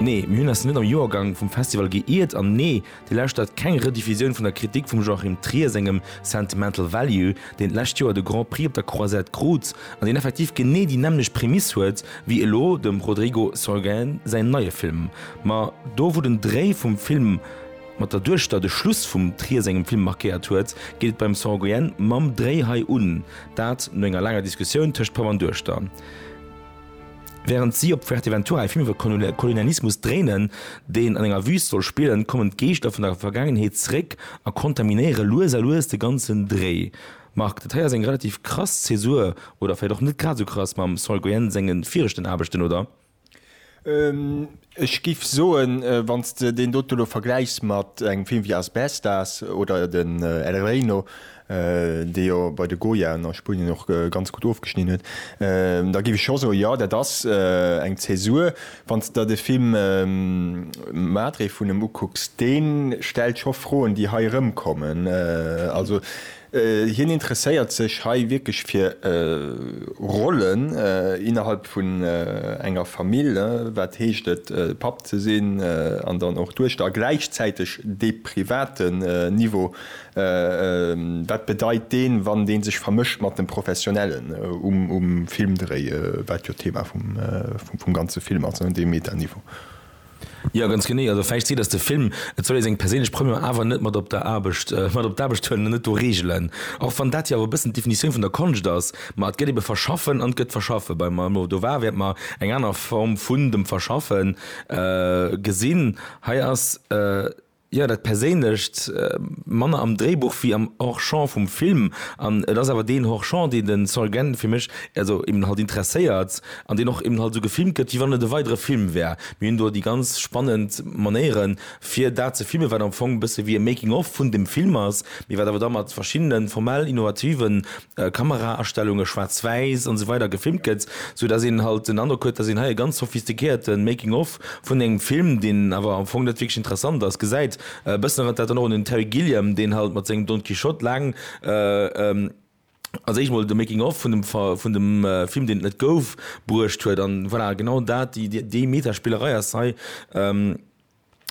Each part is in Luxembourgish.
Nee, mir hunn eis net am Joergang vum Festival geiirt, an nee, Dir lauschtert keng Rediffusioun vun der Kritik vum Joachim Trier sengem Sentimental Value, deen d'lescht Joer de Grand Prix op der Croisette krut, an deen effektiv genee déi nämmlecht Prämiss huet wéi elo dem Rodrigo Sorogoyen säin neie Film. Ma do wou den Dréi vum Film mat der Duechter de Schluss vum Trier sengem Film markéiert huet, geet et beim Sorogoyen mam Dréi hei un, dat no enger laanger Diskussioun tëscht Papp an Duechter. Während si op Fuerteventura e Film iwwer Kolonialismus dréinen, deen an enger Wüst soll spillen, kommen d'Geeschter vun der Vergaangenheet zréck a kontaminéiere lues a lues de ganzen Dréi. Marc, dat hei ass eng relativ krass Zäsur, oder vläicht och net grad esou krass, mam Sol Goyen senge viregten Aarbechten, oder? Ech géif soen, wann s de deen dote elo vergläichs mat engem Film wéi Asbestas oder den El Reino, dee jo bei de Goyaen a Spunien och ganz gutt ofgeschnidden huet, da géif ech scho soen, jo, dat ass eng Zäsur. Wann s de der de Film Madre vun em ukucks, dee stellt scho Froen, déi hei erëmkommen. Also hien interesséiert sech hei wierklech fir Rollen innerhalb vun enger Famill, wat heescht et, Papp ze sinn an dann och Duechter, a gläichzäiteg dee private Niveau Wat bedeit deen, wann deen sech vermëscht mat dem Professionellen um Filmdréi, wat jo d'Thema vum ganze Film ass, dee Metaniveau? Jo, ganz genee. Also vläicht seet ass de Film, et soll ee seng perséinlech Première awer net mat op der Aarbecht, mat op d'Aarbecht huelen an net do reegelen. Och wann dat jo awer e bëssen d'Definitioun vun der Konscht ass, ma et gëtt ebe verschaffen an et gëtt verschaffe bei mer. Do war wäert mer eng aner Form vun dem Verschaffe gesinn. Hei ass. Jo, dat Perséinlecht, manner am Dréibuch wéi am Hors-champ vum Film. An et ass awer deen Hors-champ, deen de Saul Gant fir mech also eben halt interesséiert an deen och eben halt esou gefilmt gëtt, wéi wann et e weidere Film wär. Mir hunn do déi ganz spannend Manéiere fir dat ze filmen, wat am Fong e bësse wéi e Making-of vun dem Film ass, mee wat awer da mat verschiddene formell innovative Kameraastellunge, Schwaarz-Wäiss an sou weider gefilmt gëtt, sou dass een halt den Androck huet, dass een hei e ganz sophistiquéierten Making of vun engem Film, deen awer am Fong net wierklech interessant ass, gesäit. E bëssen erënnert dat dann och un den Terry Gilliam, deen halt mat sengem Don Quijote laang, als éischt mol de Making of vun dem Film, deen et net gouf, bruecht huet. An voilà, genau dat, déi Meta-Spillerei ass hei.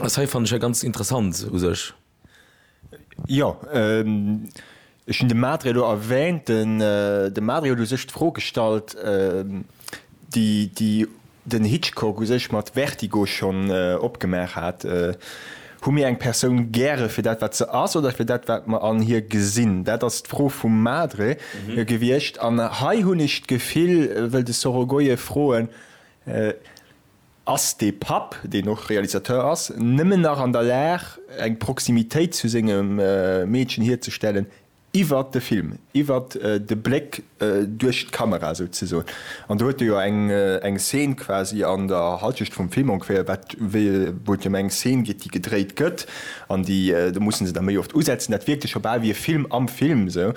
Ass hei fannen ech hei ganz interessant u sech. Jo, ech hunn de Madre elo erwähnt. Den de Madre huet u sech d'Fro gestallt, déi déi den Hitchcock u sech mat Vertigo schonn opgemaach hat, Hu mir eng Persoun gäre fir dat wat se ass oder fir dat wat mer an hir gesinn? Dat ass d'Fro vum Madre gewiescht. An hei hunn ech d'Gefill, wëll de Sorogoye froen, Ass de Papp, deen och Realisateur ass, nëmmen nach an der Lag, eng Proximitéit zu sengem Meedchen hierzestellen iwwert de Film, iwwert de Bléck duerch d'Kamera souzesoen? An do huet e jo eng Szene quasi an der Halschecht vum Film ongeféier, wat, wéi, wou et jo ëm eng Szene geet, déi gedréit gëtt, an déi, do mussen se da méi oft usetzen, dat wierkt jo scho bal wéi e Film am Film esou.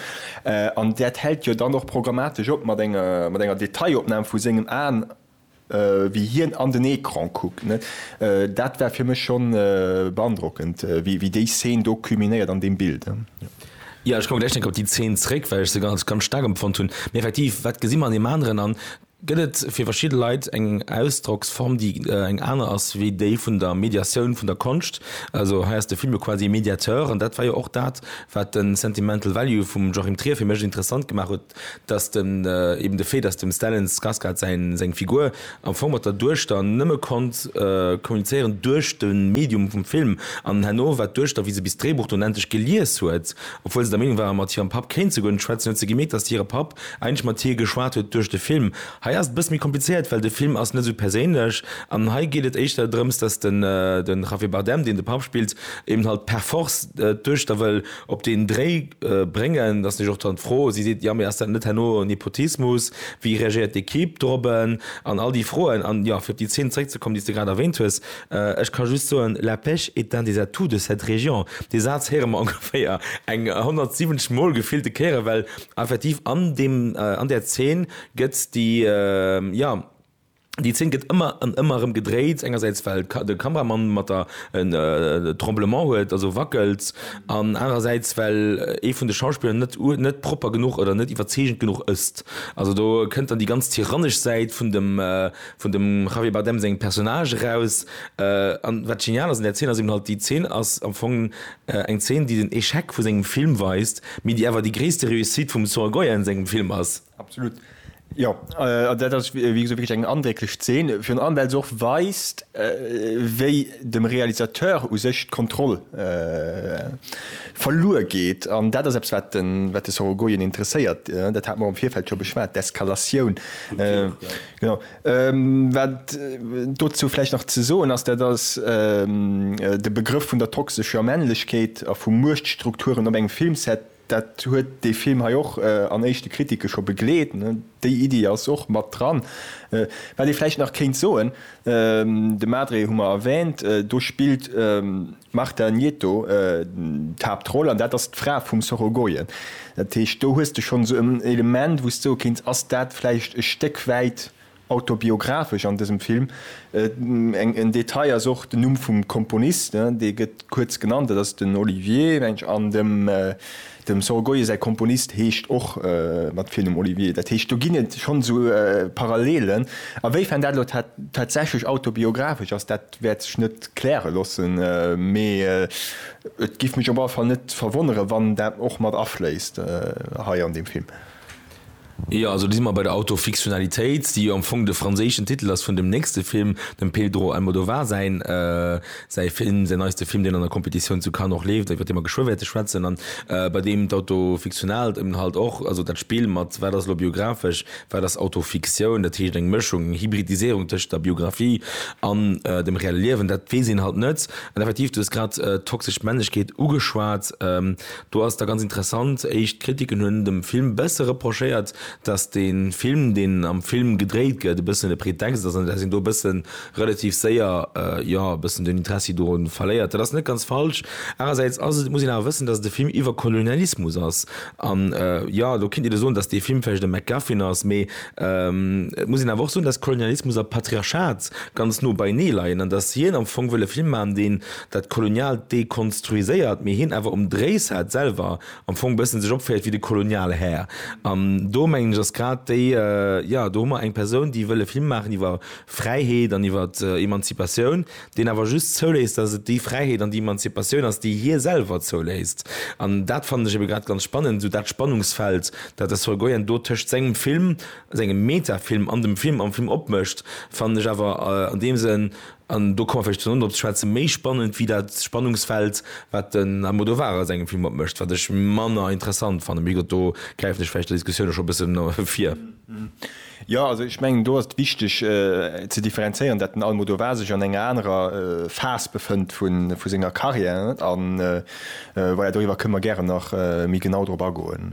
An dat hält jo dann och programmatesch op mat enger Detailopnam vu sengem Aen. wéi hien an den Ecran kuckt, net? Dat war fir mech schonn beandrockend, wéi déi Szene do culminéiert an deem Bild, jo. Jo, ech komme gläich nach op déi Szene zréck, well ech se als ganz staark empfonnt hunn. Mee effektiv, wat gesi mer an deem aneren? An gëtt et fir verschidde Leit eng Ausdrocksform, déi eng aner ass wéi déi vun der Mediatioun vun der Konscht? Also hei ass de Film jo quasi e Mediateur, an dat war jo och dat, wat de Sentimental Value vum Joachim Trier fir mech interessant gemaach huet. dass den eben de Fait, dass dem Stellan Skarsgard säin seng Figur am Fong mat der Duechter nëmme konnt kommunizéieren duerch de Medium vum Film an herno war d'Duechter, wéi se bis d'Dréibuch dunn endlech gelies huet, obwuel se der Meenung war mat hirem Papp kéint se guer net schwätzen, huet se gemierkt, dass hire Papp eigentlech mat hir geschwat huet duerch de Film. Hei ass et e bësse méi komplizéiert, well de Film ass net esou perséinlech an hei geet et éischter drëms, dass de Javier Bardem, deen de Papp spillt, eben halt per force d'Duechter wëll Op deen Dréi bréngen. Da ass natierlech och dann d'Fro, si seet, jo, mee ass dat net herno Nepotismus, wéi reagéiert d'Ekipp dorobben an all déi Froen? An jo, fir op déi Zeen zréckzekommen, déi s de grad erwähnt hues, ech ka just soen, La pêche est un des atouts de cette région. Dee Saz héiere mer ongeféier eng 170 Mol gefillte Kéiere well effektiv an deem, an där Zeen gëtt déi, jo, Déi Zeen gëtt ëmmer an ëmmer erëm gedréit, engersäits well de Kameramann mat der en Tremblement huet, also wackelt, an anerersäits well ee vun de Schauspiller net net propper genuch oder net iwwerzeegend genuch ësst. Also do kënnt dann déi ganz tyrannesch Säit vun dem vun dem Javier Bardem sengem Personnage eraus. An wat genial ass un där Zeen ass eben halt, déi Zeen ass am Fong eng Zeen déi den Echec vu sengem Film weist, mee déi awer déi gréisste Réussite vum Sor Goya an sengem Film ass. Absolut, jo. An dat ass, wéi gesot, wierklech eng andrécklech Zeen, virun allem well se och weist, wéi dem Realisateur u sech d'Kontroll verluer geet. An dat ass eppes, wat de Sorogoyen interesséiert. Dat hate mer och am Virfeld scho beschwat, d'Eskalatioun. Genau. Wat dozou vläicht nach ze soen ass, dat ass de Begrëff vun der toxescher Männlechkeet a vu Muechtstrukturen op engem Filmset, Dat huet dee Film hei och an éischte Kritike scho begleet. Déi Iddi ass och mat dran. Wat ee vläicht nach kéint soen, de Madre hu mer erwäänt, do spillt d'Marta Nieto d'Haaptroll an dat ass d'Fra vum Sorogoyen. Dat heescht, do hues de schonn esou en Element, wou s de soe kéints, ass dat vläicht e Stéck wäit Autobiographesch an dësem Film. En Detail ass och den Numm vum Komponist, dee gëtt kuerz genannt, dat ass den Olivier, mengen ech, an dem Sorgoye säi Komponist heescht och mat Virnumm Olivier. Dat heescht, do ginn et schonn esou Parallelen. A wéi fern dat elo tatsächlech autobiographesch ass, dat wäert sech net kläre loossen, mee et géif mech op alle Fall net verwonnere wann dat och mat afléisst hei an deem Film. Jo, also do si mer bei der Autofiktionalitéit, déi jo am Fong de franséischen Titel ass vun dem nächste Film, dem Pedro Almodovar säin, säi Film, säin neiste Film, deen an der Competitioun zu Cannes och leeft, iwwert dee mer geschwë wäerte schwätzen an bei deem d'Auto fictionalt eben halt och, also dat Spill mat wat ass elo biographesch, wat ass Autofiktioun, dat heescht eng Mëschung, eng Hybridiséierung tëschent der Biographie an dem reelle Liewen, dat weess een halt net. An effektiv, du hues grad d'toxesch Männlechkeet ugeschwat. Do ass da ganz interessant, éischt Kritiken hunn dem Film bësse reprochéiert, datt de Film, deen am Film gedréit gëtt, e bëssen e Pretext ass an datt een do e bësse relativ séier, jo, e bëssen den Interessi doru verléiert. Dat ass net ganz falsch. Anersäits ass et, muss een awer wëssen, datt et e Film iwwer Kolonialismus ass an, jo, do kinnt een da soen, datt dee Film vläicht e McGuffin ass, mee et muss een awer och soen, datt Kolonialismus a Patriarchat ganz no beienee leien an datt hien am Fong wëll e Film maachen, deen dat Koloniaalt dekonstruiséiert, mee hien awer um Dréisat selwer am Fong bëssen sech opféiert wéi de Kolonialhär. An do mengen ech ass grad déi, jo do hu mer eng Persoun déi wëll e Film maachen iwwer Fräiheet an iwwer Emanzipatioun, deen awer just zouléisst datt et déi Fräiheet an déi Emanzipatioun ass déi hie selwer zouléisst. An dat fannen ech ebe grad ganz spannend, esou dat Spannungsfeld dat de Sorogoyen do tëscht sengem Film, sengem Metafilm an dem Film am Film opmécht fannen ech awer an deem Sënn An do komme mer vläicht zesummen drop ze schwätzen, méi spannend wéi dat Spannungsfeld, wat den Almodovar a sengem Film opmécht, wat ech manner interessant fannen. Mee gutt, do gräifen ech vläicht der Diskussioun elo scho e bëssen vir. Jo, also ech mengen, do ass et wichteg ze differenzéieren, dat den Almodovar sech an enger anerer Phas befënnt vu senger Carrière. An voilà, doriwwer kënne mer gären nach méi genau drop agoen.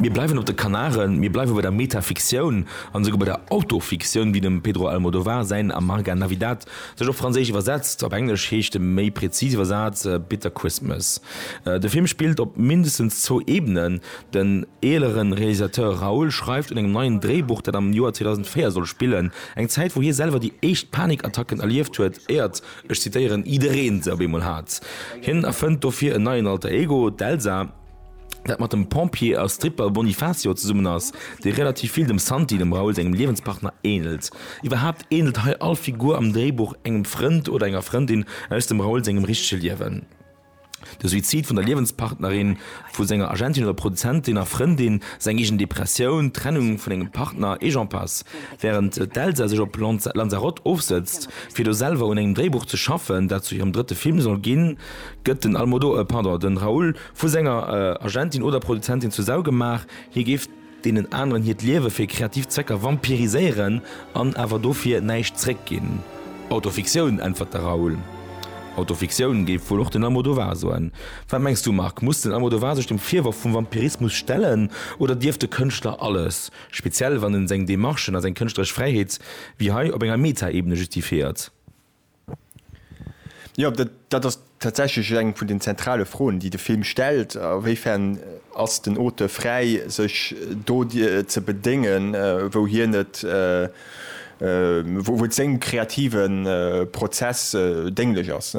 Mir bleiwen op de Kanaren, mir bleiwe bei der Metafiktioun an esouguer bei der Autofiktioun, wéi dem Pedro Almodovar säin Amarga Navidad sech op Franséisch iwwersetzt. Op Englesch heescht e méi präzis Iwwersaz Bitter Christmas. De Film spillt op mindestens zwou Ebenen. Den eelere Realisateur Raúl schreift un engem neien Dréibuch, dat am Joer 2004 soll spillen, eng Zäit wou hie selwer déi éischt Panikattacken erlieft huet, éiert Ech zitéieren, Idereen se op eemol hat. Hien erfënnt dofir en neien Alter Ego, d'Elsa, dat mat dem Pompier a Stripper Bonifacio zesummen ass, dee relativ vill dem Santi, dem Raoul sengem Liewenspartner, ähnelt. Iwwerhaapt ähnelt hei all Figur am Dréibuch engem Frënd oder enger Frëndin aus dem Raoul sengem richtege Liewen. De Suizid vun der Liewenspartnerin vu senger Agentin oder Produzentin a Frëndin, seng eegen Depressioun, d'Trennung vun engem Partner et j'en passe. Wärend d'Elsa sech op Lanzarote ofsëtzt, fir do selwer un engem Dréibuch ze schaffen, dat zu hirem drëtte Film soll ginn, gëtt den Almodo, pardon, de Raúl vu senger Agentin oder Produzentin zu Sau gemaach, hie géif deenen aneren hiert Liewe fir kreativ Zwecker vampiriséieren an awer dofir näischt zréck ginn. Autofiktioun, äntwert de Raoul. Autofiktioun, géif wuel och den Almodovar soen. Wat mengs du, Marc, muss den Almodovar sech dem Virworf vum Vampirismus stellen oder dierf de Kënschtler alles, speziell wann en seng Demarchen a seng kënschtleresch Fräiheet wéi hei op enger Meta-Ebene justifiéiert? Jo, dat ass tatsächlech eng vun den zentrale Froen, déi de Film stellt. A wéi fern ass den Auteur fräi, sech do ze bedéngen, wou hien et, wou et sengem kreative Prozess dénglech ass?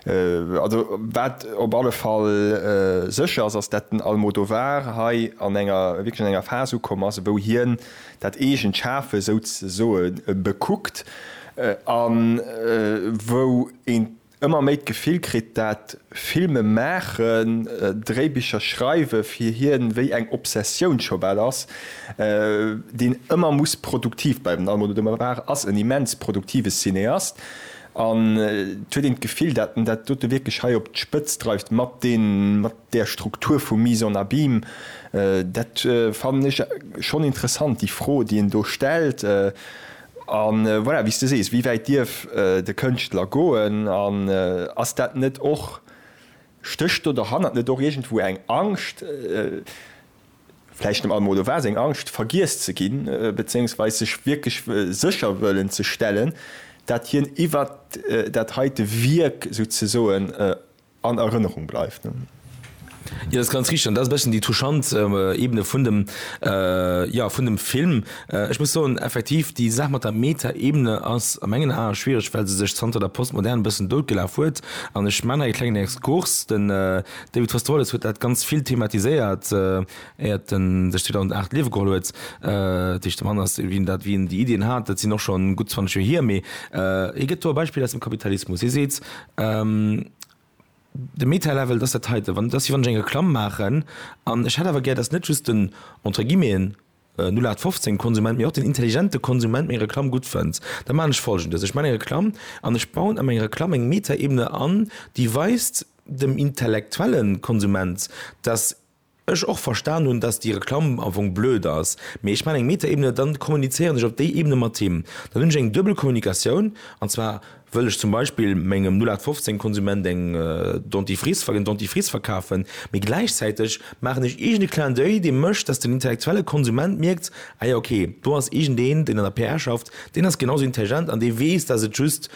Also wat op alle Fall sécher ass, ass dat den Almodovar hei an enger, wierklech an enger Phas ukomm ass, wou hien dat eegent Schafe souzesoe bekuckt. A wou een ëmmer méi d'Gefill kritt, dat Filme maachen, Dréibicher schreiwe fir hien wéi eng Obsessioun scho bal ass, déi en ëmmer muss produktiv bleiwen. Den Almodóvar de Mar ass en immens produktive Cineast an et huet een d'Gefill, dat en dat dote wierklech hei op d'Spëtzt dreift mat där Struktur vu Mise en abîme. Dat fannen ech schonn interessant, déi Fro, déi en do stellt. A voilà, wéi s de sees, wéi wäit dierf de Kënschtler goen? An ass dat net och, stécht do derhannert net och iergendwou eng Angscht, vläicht net mol, oder war se eng Angscht, vergiess ze ginn, bezéiungsweis sech wierklech sécher wëllen ze stellen, dat hien iwwert dat heite Wierk souzesoen An Erënnerung bleift. Jo, dat ass ganz richteg an dat ass e bësschen déi touchant Ebene vun dem, jo, vun dem Film. Ech muss soen, effektiv, déi Saach mat der Meta-Ebene ass a mengen Ae schwiereg, well se sech zanter der Postmoderne e bëssen doutgelaf huet. An ech maachen hei e klengen Exkurs, Den David Foster Wallace huet dat ganz vill thematiséiert, éiert en sech 2008 d'Liewe geholl huet. Dat heescht, de Mann ass, wéi en dat, wéi en déi Iddien hat, dat sinn och schonn gutt 20 Joer hier. Mee hie gëtt do e Beispill aus dem Kapitalismus. Hie seet, De Meta Level, dass dat heiten, wann dass si wann ech eng Reklamm maachen an ech hätt awer gär, dass net just den entre guillemeten 0815 Konsument, mee och den intelligente Konsument meng Reklamm gutt fënnt, da maachen ech Folgendes, Ech maachen eng Reklamm an ech bauen a meng Reklamm eng Meta-Ebene an, déi weist dem intellektuelle Konsument, dass Ech och verstan hun dass déi Reklamm am Fong blöd ass, mee ech man eng Metaebene, dann kommunizéieren ech op déi Ebene mat him, dann hun ech eng duebel Kommunikatioun, an zwar wëll ech zum Beispill mengem 0815 Konsument eng Dentifrice, en Dentifrice verkafen, mee gläichzäiteg maachen ech iergend e Clin d'oeil dee mécht dass den intellektuelle Konsument mierkt, ah jo ok, do ass iergend een deen an der PR schafft, deen ass genau sou intelligent an dee weess dass et just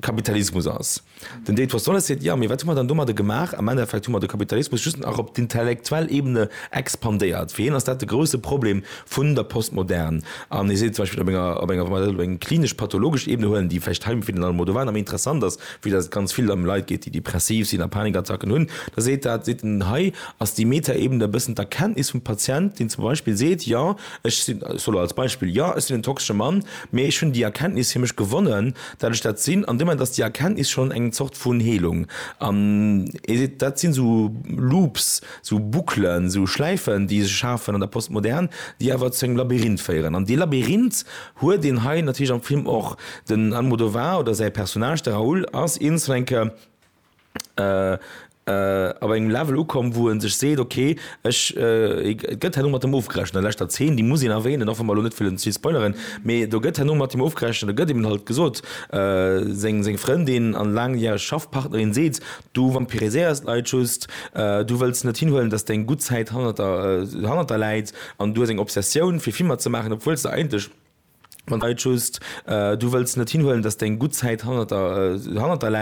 Kapitalismus ass. Den Dave Rosales seet, Jo, mee wat hu mer dann domadde gemaach? Am Endeffekt hu mer de Kapitalismus just nach op d'intellektuell Ebene expandéiert. Fir hien ass dat de grousse Problem vun der Postmodern. An hie seet zum Beispill, op enger, op enger, wa mer dat op eng klinesch-pathologesch Ebene huelen, déi vläicht hei am Finalen emol do war, nach méi interessant ass, wéi datt et ganz vill ëm Leit geet, déi depressiv sinn a Panikattacken hunn, da seet dat, seet en, hei ass déi Metaebene e bëssen d'Erkenntnis vum Patient, deen zum Beispill seet, Jo, ech sinn, ech soll elo als Beispill, jo, ech sinn en toxesche Mann, mee ech hunn déi Erkenntnis fir mech gewonnen, dat ech dat sinn, an deem Moment ass déi Erkenntnis schonn eng Zort vun Heelung. An ee seet, dat sinn esou Loops, esou Bouclen, esou Schläifen, déi sech schafen an der Postmodern, déi awer zu engem Labyrinth féieren. An dee Labyrinth huet een hei natierlech am Film och. Den Almodovar oder säi Personnage, de Raoul, ass eens eng Kéier op engem Level ukomm wou en sech seet ok ech et gëtt herno mat em ofgerechent an der leschter Zeen, déi muss een erwähnen och wa mer elo net wëllen ze vill spoileren, mee do gëtt herno mat him ofgerechent, da gëtt him halt gesot, seng seng Frëndin an laangjäreg Schaffpartnerin seet du vampiriséiers d'Leit just, du wëlls net hinhuelen datt deng gutt Zäit hannert der hannert der läit an du hues eng Obsessioun fir Filmer ze maachen obwuels de eigentlech Leit just, du wëlls net hinhuelen datt deng gutt Zäit hannert der hannert der läit.